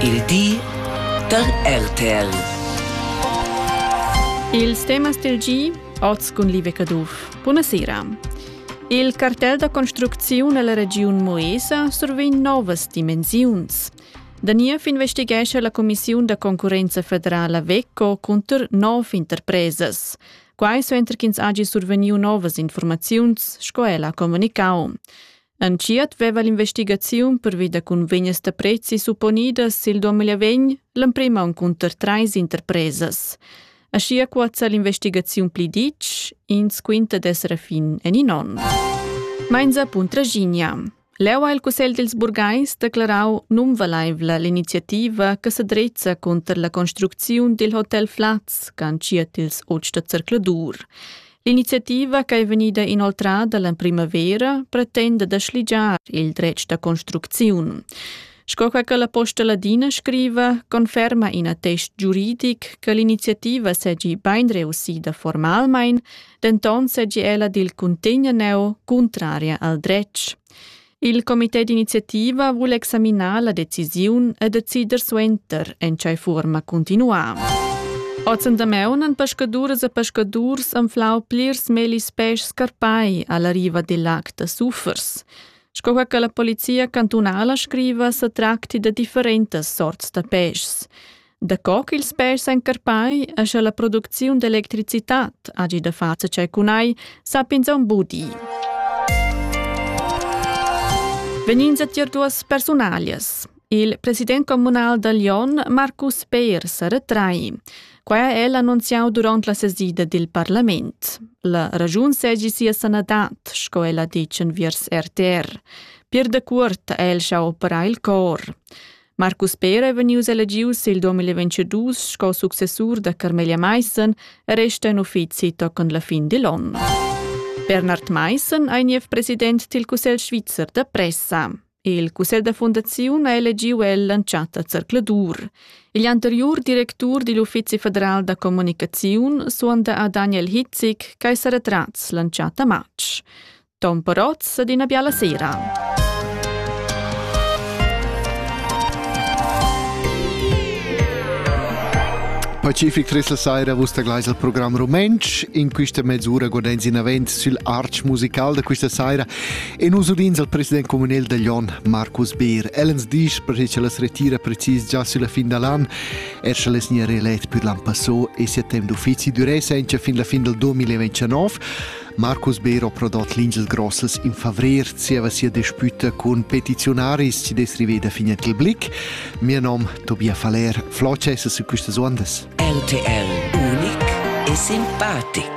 Il di da RTL. Ils temas del gi, oz cun Live Caduff. Buonasera. Il cartel da construcziun alla regiun Moesa survegn novas dimensiuns. Da niev investighescha la Commissiun da concurrenza federala VECO cunter nov interpresas. Quai suenter ch'ins hagi survegniu novas informaziuns, sco ella ha comunicau. Entschiet veva l'investigaziun pervi da cunvegnas da prezzi supponidas sil 2020 l'emprem aunc cunter treis interpresas. Aschia cuozza l'investigaziun pli ditg, ins quinta d'esser a fin en in onn. Mainza Puntraginia. Leu ha il Cussegl dils burgais declarau nunvaleivla l'iniziativa che sedrezza cunter la construcziun dil hotel Flaz, cantiet ils oz da zercladur. L'iniziativa che è vegnida inoltrada la primavera pretenda da schligiar il dretg da construcziun. Sco che la Posta Ladina scriva, conferma in attest giuridic che l'iniziativa segi ben reussida formalmain, denton segi ella dil cuntegna neu cuntraria al dretg. Il comité d'iniziativa vul examinar la decisiun e decider suenter en tgei forma continuam. Oz andameunan pescaduras e pescadurs anflau plirs melis peisch scarpai alla riva dil lac da Suffers. Sco che la polizia cantunala scriva, se tracti da differentas sorts da peischs. Daco ch'ils pers encarpai e sche la producziun d'electricitad hagi da far tschei cun ei, sap'ins aunc buca. Vegnin a tier duas persunalias. Il president communal da Lyon, Marcus Peir, sa retrai. Quai ha el annunziau duront la sesida dil parlament. La ragiun segi sia sanadad, sco el ha detg enviers RTR. Pier de Cuort ha el schau operar il cor. Marcus Pera è vegnius elegius il 2022 sco successur da Carmelia Maissen e resta in uffizi tochen la fin digl onn. Bernhard Maissen ei niev president dil Cussegl svizzer da pressa. Il cussegl da fundaziun ha elegiu el l'entschatta zercladur. Igl anteriur directur digl uffizi federal da comunicaziun suonda a Daniel Hitzik, che ei seretrats l'entschatta matg. Ton Parotz ed ina biala sera. Pacific Trissel Saira, vus taglais al program rumentsch. In questa mezz'ura godens in avent sül arch musical da questa saira e nus udins al president comunal da Lyon, Marcus Beer. Ellens disch perché che las retira precis già sulla fin dall'an, er sche les nia reelett pür l'an passò e settem d'uffizi duré senza fin la fin del 2029. Marcus Bero prodot l'insel Grossels in favrer zieva sia dispüta cun petiziunaris chi dess riveda fin a quel blick. Mio nom Tobia Faller, Floces su quistas uondas. RTL unic e simpatic.